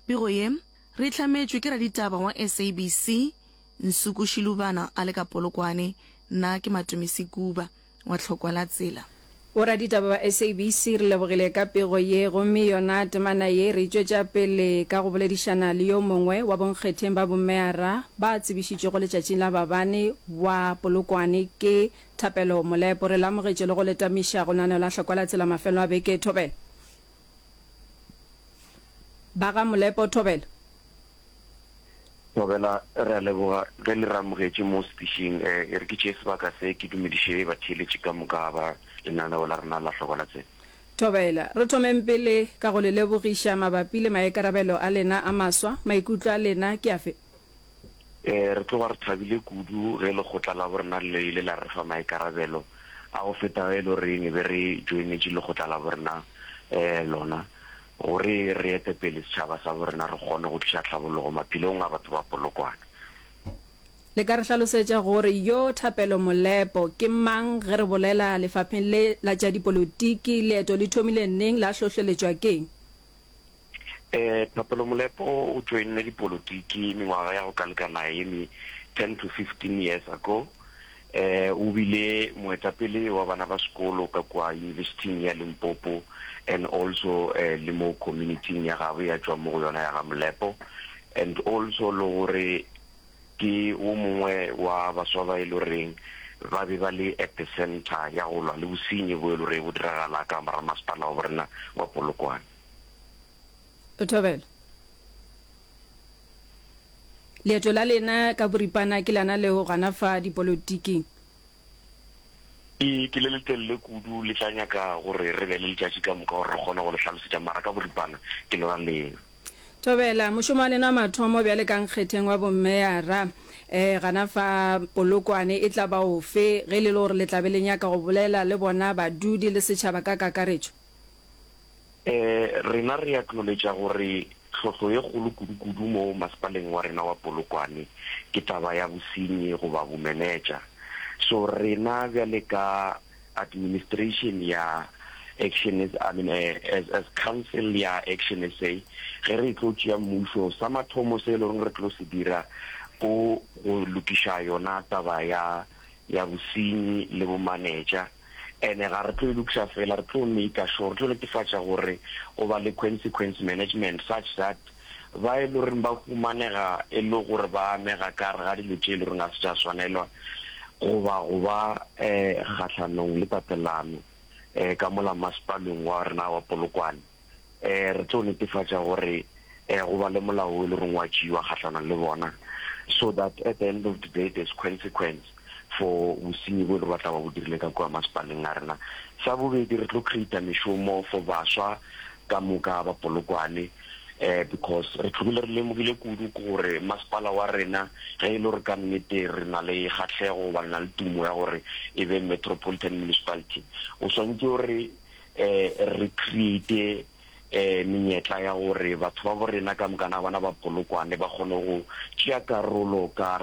Pego ye, re e hlametšwe ke raditaba wa SABC, Nsuku Shilubana a le ka Polokwane, nna ke Matumisi Kuba wa Tlhokwa la Tsela. Boraditaba ba SABC re lebogile ka pego ye gomme yona temana ye re e tšwetša pele ka go boledišana le yo mongwe wa bonkgetheng ba bomeyara ba tsebišitšwego letšatšing la babane wa Polokwane ke Thapelo Molepo. Re le amogetše le go le tamiša go lenaneola Tlhokwa la Tsela mafelo a beke. Thobela. Ba ga Molepo, Thobela. Thobela, re a leboga ge le re amogetše mo sepišing. E re ke tšee sebaka se ke dumediše batheeletši ka moka ba lenaneo la rena la Hloko la Tsebe. Thobela, re thomeng pele ka go le lebogiša mabapi le maikarabelo a lena a maswa. Maikutlo a lena ke afe? Ee, re tloga re thabile kudu ge lekgotla la borena le ile la re fa maikarabelo a go feta ge e le gore ne be re joinetše lekgotla la borena um lona gore re ete pele setšhaba sa borena re kgone go tliša tlhabologo maphelong a batho ba Polokwane. Le ka re hlalosetša gore yo Thapelo Molepo ke mang ge re bolela lefapheng le la tša dipolotiki? Leeto le thomile neng, la hlohleletšwa ke'ng? Eh, Thapelo Molepo o joinne dipolotiki mengwaga ya go ka lekana ye me 10 to 15 years ago. Eh, o bile moetapele wa bana ba sekolo ka kwa Yunibesithing ya Limpopo and also eh, le mo communityng ya gabo ya tšwa mo go yona ya ga Molepo and also le gore Ke wo mongwe wa baswa ba e lo reng ba be ba le epicenter ya go lwa le bosenyi bo e lo re bo diragala ka mora masepala wa borena wa Polokwane. Thobela, leeto la lena ka boripana ke lana leo gana fa dipolotiking E ke le letelele kudu, le tla nyaka gore re be le letšatši ka moka gore re kgone go le hlalosetša, mara ka boripana ke le raleng. Thobela, mošomo wa lena wa mathomo bjale ka nkgetheng wa bomeyara, ee, gana fa Polokwane, e tla ba ofe, ge e le le gore le tla be le nyaka go bolela le bona badudi le setšhaba ka kakaretšo? E, rena re acknowledge gore tlhohlo ye kgolo kudu-kudu mo masepaleng wa rena wa Polokwane ke taba ya bosenyi goba bomenetša. So rena bjale ka administration ya Action, I mean, as, as council ya Action SA, ge re tlo tšea mmušo, sa mathomo se e le gore re tlo se dira ko go lokiša yona taba ya, ya bosenyi le bomanetša. Ene ga re tlo e lokiša fela, re tlo maker sure, re tlo netefatša gore go ba le consequence management such that ba e le goreng ba humanega e le gore ba amega ka gare ga dilo tše e le goreng ga se tša swanelwa goba go ba um kgahlanong le tatelano um ka mola masepalong wa rena wa Polokwane. um re tlo netefatša gore um go ba le molao o e le reng wa tšewa kgahlanong le bona, so that at the end of the day there's consequence for bosenyi bo e le gore ba tla ba bo dirile ka kua masepaleng a rena. Sa bobedi re tlo creator mešomo for baswa ka moka ba Polokwane, um because re tlhogile re lemogile kudu ke gore masepala wa rena ge e le gore ka nnete re na le kgahlego goba re na le tumo ya gore e be metropolitan municipality o swantse o re re create menyetla ya gore batho ba bo rena ka mokana bona ba polokwane, ba kgone go tšea karolo ka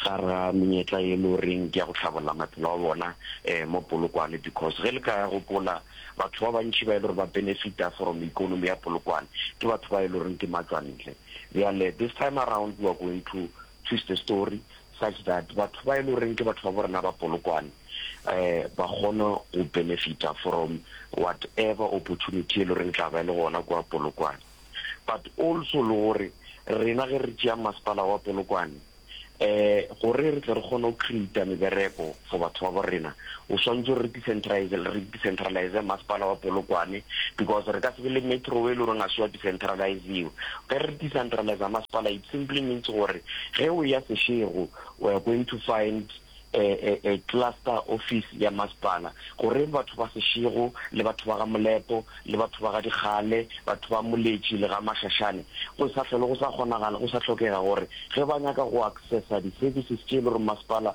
gare ga menyetla e le goreng ke ya go tlhabolola maphelo a bona mo Polokwane. Because ge le ka ya gopola, batho ba bantši ba e le gore ba benefita from economy ya Polokwane ke batho ba e le goreng ke matswantle. Bjale this time around we are going to twist the story, such that batho ba e le goreng ke batho ba bo rena ba Polokwane um ba kgone go benefita from whatever opportunity e le goreng tla ba e le gona kwa Polokwane but also le gore rena ge re tšea masepala wa Polokwane um gore re tle re kgone go creata mebereko for batho ba bo rena. O swantse re decentralize, re decentralize masepala wa Polokwane because re ka se be le metro e le gore ga se wa decentraliziwa. Ge re decentralize masepala it simply means gore ge o ya Seshego we are going to find a, a, a cluster office ya masepala gore batho ba Seshego le batho ba ga Molepo le batho ba ga Dikgale, batho ba Moletši le ga Mashashane go sa hlole go sa kgonagala, go sa hlokega gore ge ba nyaka go accessa di services tše e le gore masepala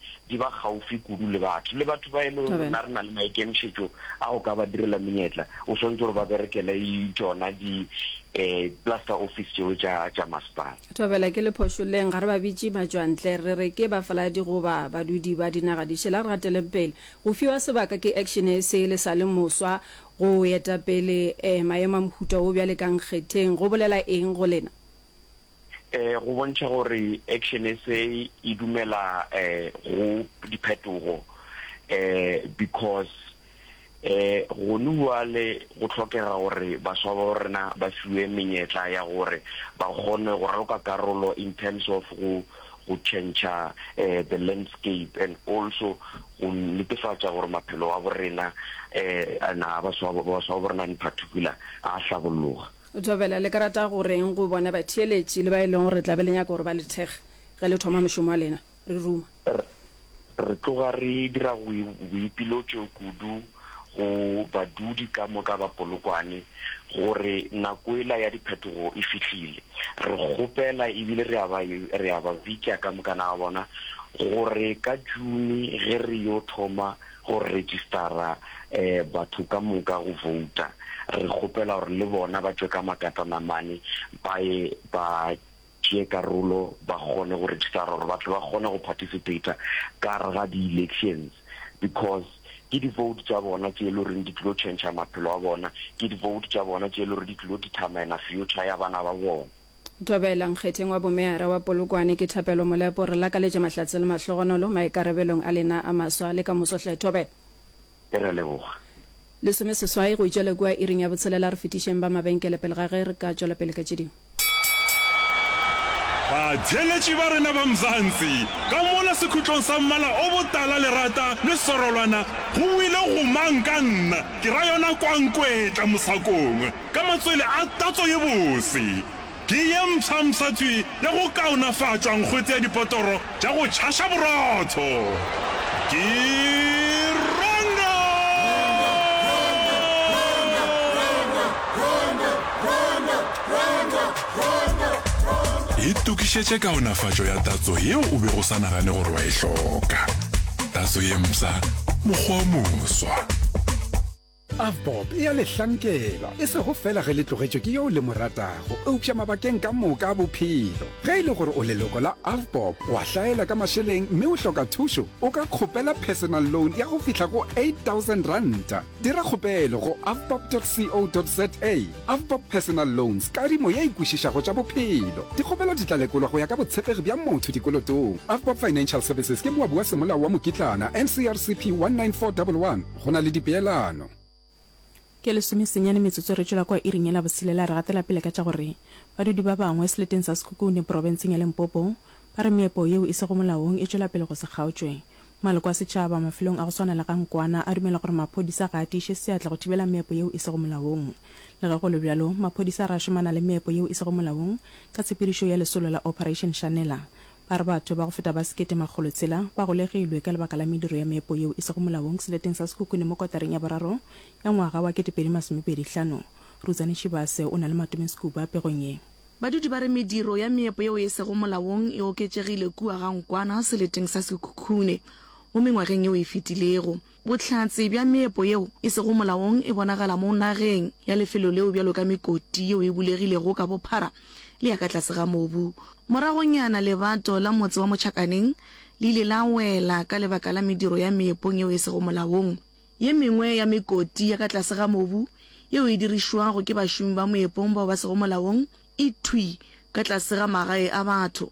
di ba gaufi kudu le batho, le batho ba e lego gore na re na le maikemišetšo a go ka ba direla menyetla, o swantse gore ba berekele tšona di um plaster office tšeo tša tša masepala. Thobela, ke le phošoleng, ga re ba bitše matšwantle, re re ke bafaladi goba badudi ba dinaga di šele. A re gateleng pele. Go fiwa sebaka ke action e se le sa le moswa go eta pele um maemo a mohuta wo bjale ka nkgetheng, go bolela eng go lena? um go bontšha gore Action SA e dumela um go diphetogo um because um gone bjale go hlokega gore baswa ba rena ba fiwe menyetla ya gore ba kgone go raloka karolo in terms of go go tšhentšha um the landscape and also go netefatša gore maphelo a borena um na baswa ba rena in particular a hlabologa. Thobela, Le ka rata go re'ng go bona batheeletši le ba e lego gore le tla be le nyaka gore ba le thekge ge le thoma mošomo wa lena? Re ruma. Re, re tloga re dira go, boipilotšo kudu go badudi ka moka ba Polokwane gore nako ela ya diphetogo e fihlile. Re kgopela ebile re a ba, re a ba bitša ka mokana ga bona gore ka June ge re yo thoma go registara batho ka moka go vouta, re kgopela gore le bona ba tšwe ka makatana mane ba ye ba tšee karolo ba kgone go registara gore ba tle ba kgone go participator ka gare ga di-elections because ke di-vote tša bona tše e le goreng di tlilo change-a maphelo a bona, ke di-vote tša bona tše e le gore di tlilo determine-a future ya bana ba bona. Thobela Nkgetheng wa Bomeyara wa Polokwane ke Thapelo Molepo re lakaletše mahlatse le mahlogonolo maikarebelong a lena a maswa le ka moso hle Thobela. Ke re leboga. Lesome seswai go itšwa le kua iring ya botshelela re fetišeng ba mabenkele pele ga ge re ka tšwela pele ka tše dingwe. Batheeletši ba rena ba Mzansi, ka mola sekhutlong sa mmala o botala lerata le sorolwana, go buile go mang ka nna, ke ra yona Kwankwetla mosakong? Ka matswele a tatso ye bose, ke ye mpsha-mpsha tswi ya go kaonafatšwa nkgwetse ya dipotoro tša go tšhaša borotho. Ke Rongo! Itokišetše kaonafatšo ya tatso yeo o bego o sa nagane gore wa e hloka. Tatso ye mpsha, mokgwa o moswa. Avbob e a le hlankela, e sego fela ge le tlogetšwe ke yo le mo ratago, eupša mabakeng ka moka a bophelo. Ge e le gore o leloko la Avbob, o a hlaela ka mašeleng mme o hloka thušo, o ka kgopela personal loan ya go fihla go R8000. Dira kgopelo go avbob.co.za. Avbob Personal Loans, kadimo ye e kwešišago tša bophelo. Dikgopelo di tla lekolwa go ya ka botshepegi bja motho dikolotong. Avbob Financial Services ke moabi wa semolao wa mokitlana, NCRCP 19411. Go na le dipeelano. Ke lesome senyane metsotso re tšwela kwa iring yela boselela re gatela pele ka tša gore badudi ba bangwe seleteng sa Sekhukhune porobenseng ya Limpopo ba re meepo yeo e sego molaong e tšwela pele go se kgaotšwe. Maloko a setšhaba mafelong a go swana le ga Nkwana a dumela gore maphodisa ga a tiiše seatla go thibela meepo yeo e sego molaong. Le ge go le bjalo maphodisa ra šomana le meepo yeo e sego molaong ka tshepedišo ya lesolo la Operation Shanela. Ba re batho ba go feta ba sekete makgolo tshela ba golegilwe ka lebaka la mediro ya meepo yeo e sego molaong seleteng sa Sekhukhune mo kotareng ya boraro ya ngwaga wa ketepedi masomepedi hlano. Rutsane Shibase o na le matomeng Skuba pegong ye. Badudi ba re mediro ya meepo yeo e sego molaong e oketšegile kua ga Nkwana seleteng sa Sekhukhune mo mengwageng yeo e fetilego. Bohlatse bja meepo yeo e sego molaong e bonagala mo nageng ya lefelo leo bjalo ka mekoti yeo e bulegilego ka bophara le ya ka tlase ga mobu. Moragonyana lebato la motse wa Mochakaneng le ile la wela ka lebaka la mediro ya meepong yeo e sego molaong. Ye mengwe ya mekoti ya ka tlase ga mobu yeo e dirišwago ke bašomi ba moepong bao ba sego molaong e thwi ka tlase ga magae a batho.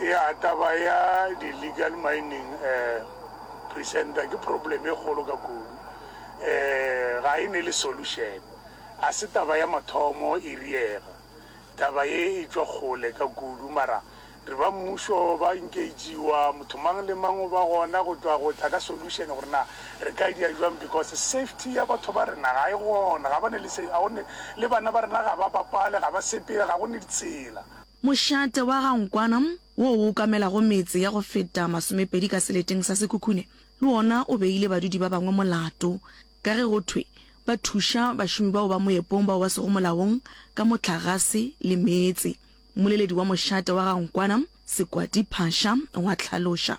Ya taba ya di legal mining eh presenter ke problem e kgolo ka kudu eh ga e ne le solution a se taba ya mathomo e riega taba ye e tšwa kgole ka kudu mara re ba mmušo ba engagiwa motho mang le mang o ba gona go tšwa go tla ka solution gore na re ka dia jwang because safety ya batho ba rena ga e gona ga ba ne le se ga one le bana ba rena ga ba bapale ga ba sepele ga go ne ditsela Mošate wa ga Nkwana, wo o okamelago metse ya go feta masomepedi ka seleteng sa Sekhukhune, le wona o beile badudi ba bangwe molato ka ge go thwe ba thuša bašomi bao ba moepong bao ba sego molaong ka mohlagase le meetse. Mmoleledi wa mošate wa ga Nkwana, Sekwati Phasha, wa hlaloša.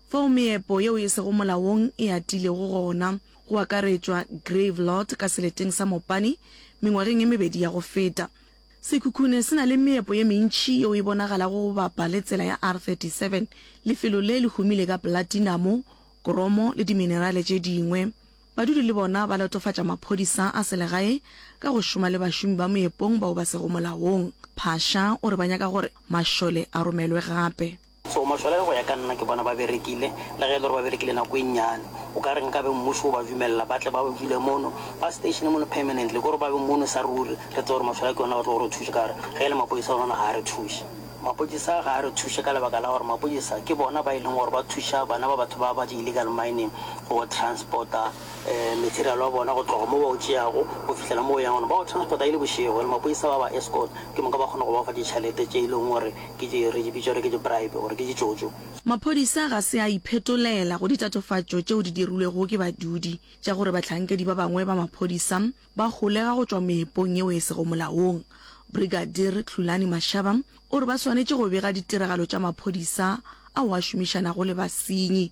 Fao meepo yeo e sego molaong e atilego gona, go akaretšwa grave lot ka seleteng sa Mopani, mengwageng e mebedi ya go feta. Sekhukhune se na le meepo ye mentši yeo e bonagalago go bapa le tsela ya R37, lefelo le le humile ka platinamo, kromo le diminerale tše dingwe. Badudi le bona ba latofatša maphodisa a selegae ka go šoma le bašomi ba moepong bao ba sego molaong. Phasha o re ba nyaka gore mašole a romelwe gape. So mohlala yo go ya ka nna ke bona ba berekile, le ge e le gore ba berekile nako e nnyane. O ka re nkabe mmušo o ba dumelela ba tle ba dule mono, ba stationer mono permanently, ke gore ba be mono sa ruri, re tsebe gore mohlala ke yona ba tlogo re thuša. Ka re ge e le mapodisa a rona ga a re thuše. Mapodisa ga a re thuše ka lebaka la gore mapodisa ke bona ba e leng gore ba thuša bana ba batho ba ba di-illegal mining go transporta material wa bona go tloga mo ba o tšeago go fihlela mo o yang gona. Ba o transporta e le bošego and mapodisa ba ba escort, ke moka ba kgona go ba fa ditšhelete tše e leng gore Ke di, re di bitša gore ke di-bribe, gore ke ditšotšo. Maphodisa ga se a iphetolela go ditatofatšo tšeo di dirilwego ke badudi tša gore bahlankedi ba bangwe ba maphodisa ba holega go tšwa meepong yeo e sego molaong. Brigadier Tlhulani Mashaba o re ba swanetše go bega ditiragalo tša maphodisa ao a šomišanago le basenyi.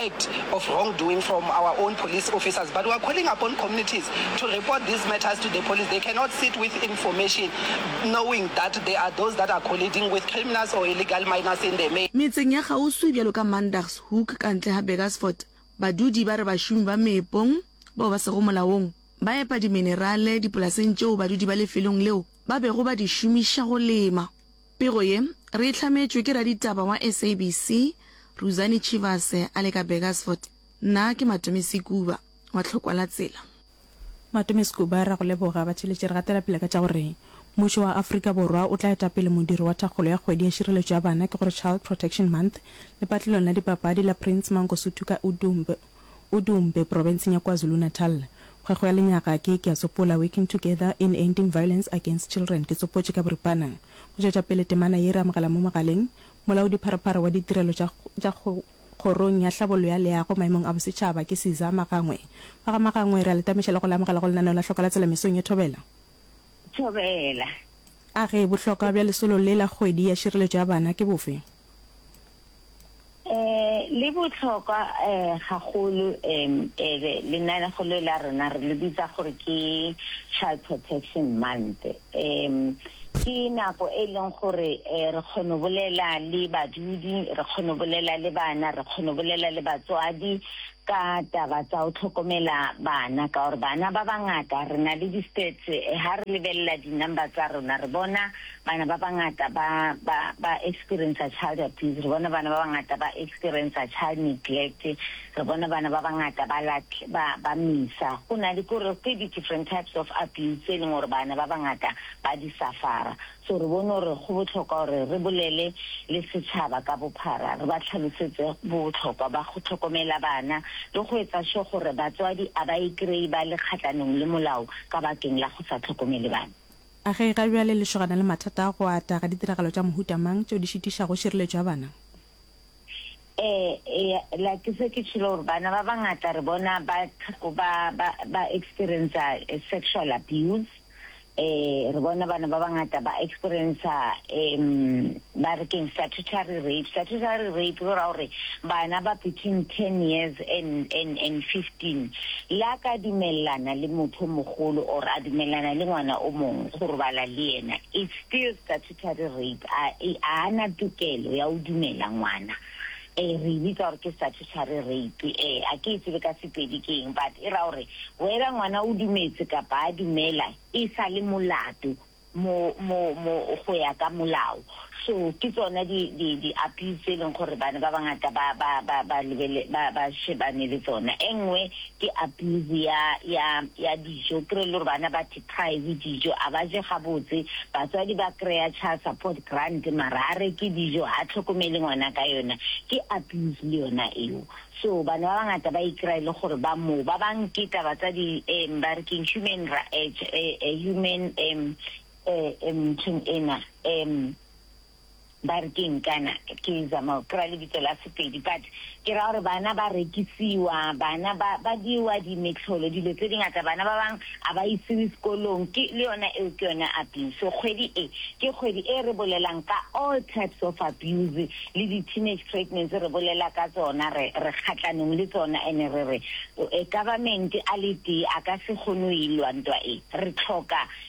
act of wrongdoing from our own police officers but we are calling upon communities to report these matters to the police they cannot sit with information knowing that there are those that are colliding with criminals or illegal miners in the Metseng ya kgauswi bjalo ka Mandagshoek ka ntle ga Burgersfort, badudi ba re bašomi ba meepong bao ba sego molaong ba epa diminerale dipolaseng tšeo badudi ba lefelong leo ba bego ba di šomiša go lema. Pego ye, re e hlametšwe ke raditaba wa SABC, Ruzani Chivase a le ka Burgersfort. Nna ke Matome Sekuba wa Tlhokwa la Tsela. Matome Sekuba, re a go leboga. Batheeletši re gatela pele ka tša gore Mmušo wa Afrika Borwa o tla eta pele modiro wa thakgolo ya kgwedi ya tšireletšo ya bana, ke gore Child Protection Month, lepatlelong la dipapadi la Prince Mangosuthu ka Udumb. Udumbe, Profenseng ya KwaZulu-Natal. Kgwekgo ya lenyaga ke Ke a Sopola, Working Together in Ending Violence Against Children, Ke Tsopotše ka Boripana. Go tšwetša pele temana ye re amogela mo mogaleng Molaodipharephare wa Ditirelo tša tša Kgorong ya Tlhabollo ya Leago maemong a Bosetšhaba ke Siza Magangwe. Ba ga Magangwe re a le tameša le go le amogela go lenaneo la Hloka la Tsela mesong ye thobela. Thobela. A re bohlokwa bja lesolo le la kgwedi ya šireletšo ya bana ke bofe? Eh, le botlhokwa eh gagolo em ebe lenanegolo la rona re le bitsa gore ke Child Protection Month. Em ke nako e leng gore eh, re kgono bolela le badudi, re kgono bolela le bana, re kgono bolela le batswadi ka taba tsa go hlokomela bana ka gore bana ba bangata re na le di-stats ha re lebelela di-number tsa rona re bona bana ba bangata ba ba ba experiencer child abuse re bona bana ba bangata ba experiencer child neglect re bona bana ba bangata ba ba ba misa go na le kore ke di-different types of abuse tse e leng gore bana ba bangata ba di safara So re bone gore go bohlokwa gore re bolele le setšhaba ka bophara, re ba hlalosetse bohlokwa ba go hlokomela bana le go etsa sure gore batswadi a ba ikreye ba le kgatlanong le molao ka bakeng la go sa hlokomele bana. A ge ga bjale le šogana le mathata a go ata ga ditiragalo tša mohuta mang tšeo di šitišago šireletšo ya bana? Eh, ea, la ke se ke tšhilo gore bana ba bangata re bona ba ba ba ba experiencer eh, sexual abuse. Eh, re bona bana ba bangata ba experiencer em ba re keng statutory rape. Statutory rape go ra gore bana ba between 10 years and and and 15 la ka dumellana le motho o mogolo or a dumellana le ngwana o mongwe go robala le yena. It's still statutory Terry Reid a e a na tokelo ya go dumela ngwana e re bitsa gore ke statutory rape e a ke e tsebe ka sepedi ke eng but e ra gore whether ngwana o dumetse kapa a dumela e sa le molato mo mo mo go ya ka molao so ke tsona di di di appeal tse leng gore bana ba bangata ba ba ba ba lebele ba ba shebane le tsona engwe ke appeal ya ya ya dijo kre le gore bana ba Pie le dijo a ba je gabotse, batswadi ba kreya child support grant mara a reke dijo ha tlhokomele ngwana ka yona, ke abuse le yona eo. So bana ba bangata ba ikreya e le gore ba moo. Ba bang ke taba tsa di um ba re keng human ra um human um um nthong ena um. ba re ke nkana ke zama go kry-a lebitso la sepedi but ke ra gore bana ba rekisiwa bana ba ba diwa dimetlholo dilo tse dingata bana ba bangwe a ba isiwe sekolong ke le yona eo ke yone abuse so kgwedi e ke kgwedi e re bolelang ka all types of abuse le di-teenage pregnancy re bolela ka tsona re re kgatlanong le tsona ene re re e government a le tee a ka se kgone o e lwa ntwa e re tlhoka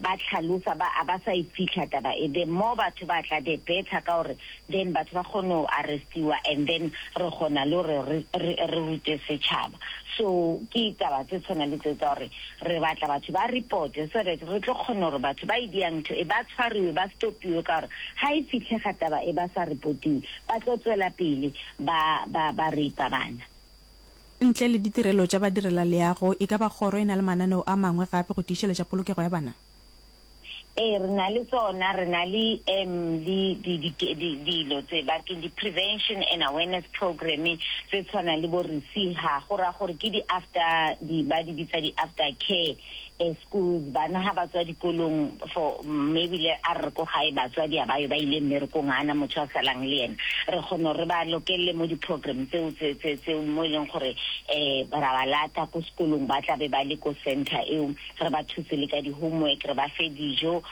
ba hlalosa ba a ba sa e fihla taba e then more batho ba tla the better ka gore then batho ba kgone go arrestiwa and then re kgona le gore re re re rute setšhaba so ke taba tse tshwana le tse tsa gore re batla batho ba reporte so that re tlo kgona gore batho ba e dia ntho e ba tshwariwe ba stopiwe ka gore ga e fihlega taba e ba sa reportiwe ba tlo tswela pele ba ba ba rape bana Ntle le ditirelo tša badirelaleago, e ka ba kgoro e na le mananeo a mangwe gape go tiišeletša polokego ya bana? Ee, re na le tsona. Re na le um le di, di, di, dilo tse ba ke di-prevention and awareness program tse tshwanang le bo-RECEHA, go raya gore ke di-after, di, ba di bitsa di-after care. E schools bana ha ba tswa dikolong for maybe le a re ko gae batswadi a ba yo ba ile mmerekong a na motho a salang le yena re kgona re ba lokelele mo di program tseo tse tse tse mo e leng gore eh ra ba lata ko sekolong ba tla be ba le ko center eo re ba thuse le ka di homework re ba fe dijo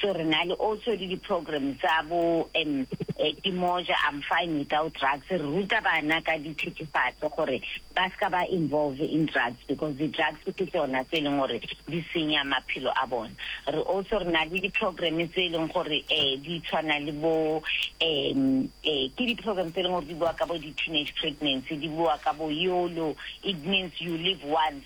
So re na le also le di program tsa bo em ke moja I'm fine without drugs re ruta bana ka di thethefatse gore ba ska ba involve in drugs because di drugs ke tsona tse leng gore di senya maphelo a bona re also re na le di program tse leng gore eh di tshwana le bo em eh ke di program tse leng gore di bua ka bo di teenage pregnancy di bua ka bo yolo it means you live once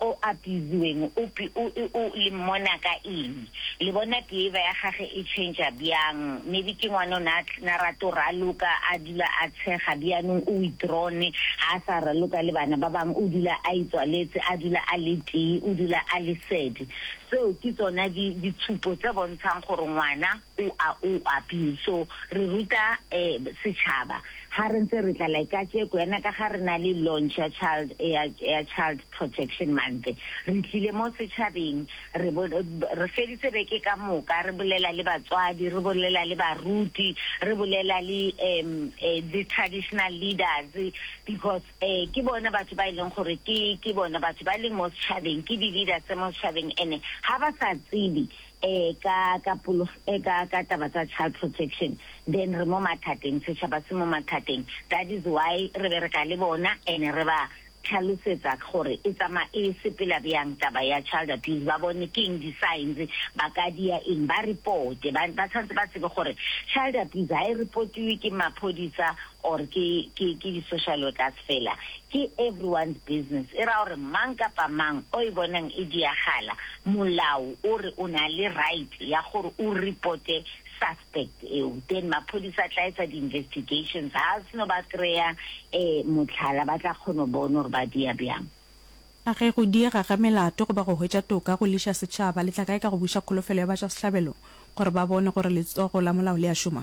o apiziweng o pi o e o le mmona ka eng le bona behavior ya gage e changer byang maybe ke ngwana o ne a na rato raloka a dula a tshega byanong o withdrawn ha a sa raloka le bana ba bang o dula a itswaletse a dula a le tee o dula a le sad tseo ke tsona di ditshupo tse bontshang gore ngwana u a u a pin so re ruta um setšhaba ha re ntse re tla like kajeko yana ka ga re na le launch ya child ya ya child protection month re tlile mo setšhabeng re bo re feditse beke ka moka re bolela le batswadi re bolela le baruti re bolela le um um le traditional leaders because Ee, ke bona batho ba e leng gore ke, ke bona batho ba leng mo setšhabeng, ke di-leader tse mo setšhabeng, and-e ga ba sa tsebe um ka, ka polog-, um ka, ka taba tsa child protection, then re mo mathateng, setšhaba se mo mathateng. That is why re bereka le bona and-e re ba tlhalosetsa gore e tsamaya, e sepela bjang taba ya child abuse, ba bone ke eng di-signs, ba ka dia eng, ba report-e, ba, ba tshwanetse ba tsebe gore child abuse ga e report-iwe ke maphodisa or ke ke ke di social workers fela ke everyone's business e ra gore mang kapa mang o e bonang e diagala molao o re o na le right ya gore o reporte suspect eo then maphodisa tla etsa di investigations ha seno ba kreya eh motlhala ba tla kgono bona gore ba dia bjang A ge go diega ga melato goba go hwetša toka go liša setšhaba, le tla kae ka go buša kholofelo ya batšwasehlabelo gore ba bone gore letsogo la molao le a šoma?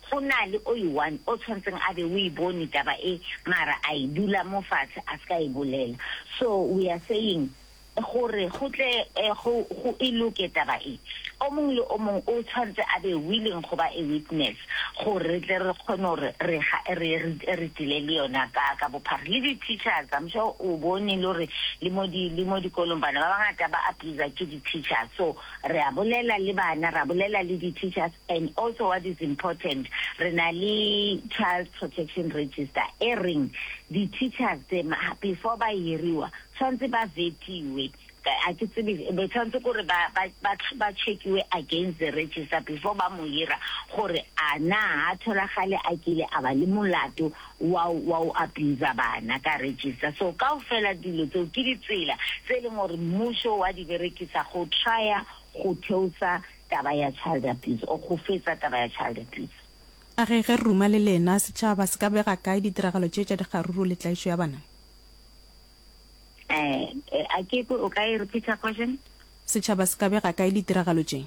Go na le o i-one o tshwantseng a be o e bone taba e mara a e dula mo fatshe a ska e bolela. So we are saying gore go tle go go e loke taba e, o mong le o mong o tshwantse a be willing go ba a witness gore re tle re kgone gore re ga re re tle le yona ka ka bophara. Le di teachers I'm sure o bone le gore le mo di le mo dikolong bana ba bangata ba abuser ke di teachers so re a bolela le bana ra bolela le di teachers and also what is important re na le child protection register e reng di teachers tse before ba hiriwa tshwantse ba vetiwe a ke tsebe be tshwantse gore ba ba ba ba checkiwe against the register before ba mo hira gore a na ha tholagale a kile a ba le molato wa wa o abuser bana ka register so kaofela dilo tseo ke ditsela tse e leng gore mmušo wa di berekisa go trya go theosa taba ya child abuse or go fetsa taba ya child abuse. A re ge re ruma le lena, setšhaba se ka bega kae ditiragalo tše tša dikgaruru le tlaišo ya bana? Eh, a ke kwe o ka e repeater question? Setšhaba se ka bega kae ditiragalo tše?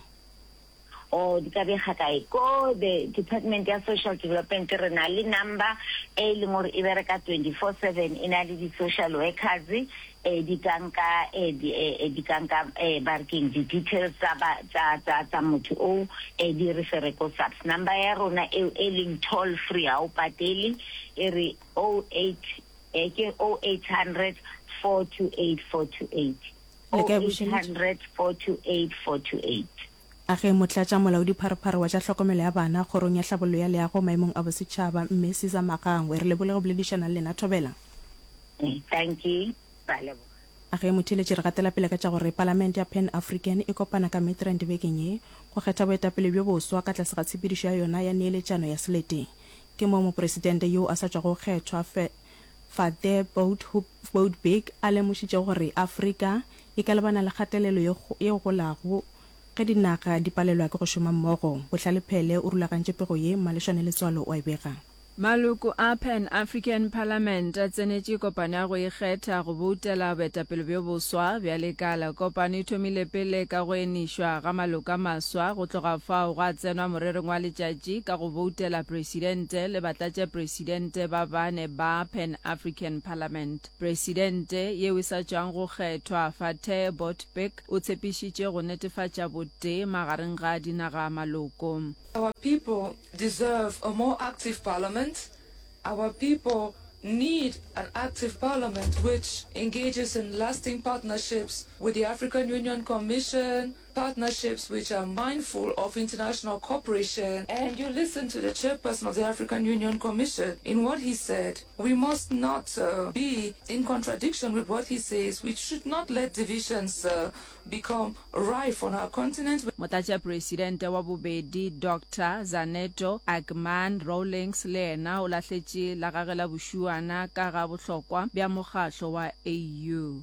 Oh, di ka bega kae? Ko the Department ya Social Development re na le number e e leng gore e bereka 24 seven, e na le di-social workers eh, di ka nka eh, di, eh, eh, di ka nka eh, ba re keng di-details tsa ba- tsa- tsa- tsa motho o eh, di re fere ko subs number ya rona eo e leng toll free ga o patele e re 08 eh, ke 0800 428 428 le ka e bušeletša. A ge Motlatša Molaodipharephare wa tša Tlhokomelo ya Bana Kgorong ya Tlhabollo ya Leago Maemong a Bosetšhaba, Mme Cesar Magangwe, re lebole go boledišana le lena Thobela. A ge Motheeletši re gatela pele ka tša gore Palamente ya Pan African e kopana ka Midrand bekeng ye go kgetha boetapele bjo boswa ka tlase ga tshepedišo ya yona ya neeletšano ya selete. Ke moo Mopresidente yo a sa tšwago go kgethwa, Fate Boutbig a lemošitše gore Afrika e ka lebana le kgatelelo ye golago ge dinaga di palelwa ke go šoma mmogo. Bohlale Phele o rulagantše pego ye, Mmalešwane Letswalo o a e bega. Maloko a Pan African Parliament a tsenetše kopano ya go ikgetha go boutela boetapele bjo boswa bja lekala. Kopano e thomile pele ka go enišwa ga maloko a maswa, go tloga fao gwa tsenwa morerong wa letšatši ka go boutela presidente le batlatšapresidente. Presidente ba bane ba Pan African Parliament. Presidente yeo e sa tšwago go kgethwa, Fatteh Botbik, o tshepišitše go netefatša botee magareng ga dinaga maloko. Our people deserve a more active parliament, our people need an active parliament which engages in lasting partnerships with the African Union Commission, Partnerships which are mindful of international cooperation and you listen to the chairperson of the African Union Commission in what he said. We must not uh, be in contradiction with what he says. We should not let divisions uh, become rife on our continent. Motlatšapresidente wa bobedi Dr. Zaneto Agman Rawlings le yena o lahletše la gagwe la bošuana ka ga bohlokwa bja mokgatlo wa AU.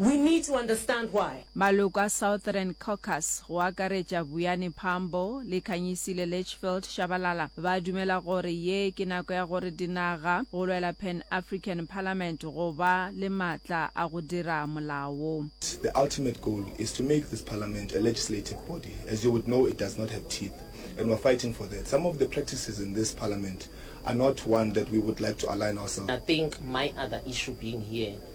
We need to understand why. Maloko a Southern Caucus, go akaretša Vuyani Phambo le Khanyisile Litchfield Shabalala, ba dumela gore ye ke nako ya gore dinaga go lwela Pan African Parliament go ba le maatla a go dira molao. The ultimate goal is to make this parliament a legislative body. As you would know, it does not have teeth and we're fighting for that. Some of the practices in this parliament are not one that we would like to align ourselves. I think my other issue being here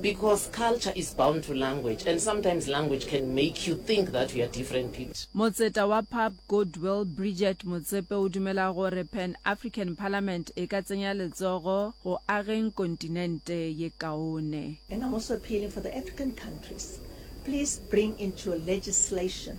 because culture is bound to language and sometimes language can make you think that we are different people. Motseta wa Pub Goodwill Bridget Motsepe o dumela gore Pan African Parliament e ka tsenya letsogo go ageng kontinente ye kaone. And I'm also appealing for the African countries, please bring into your legislation.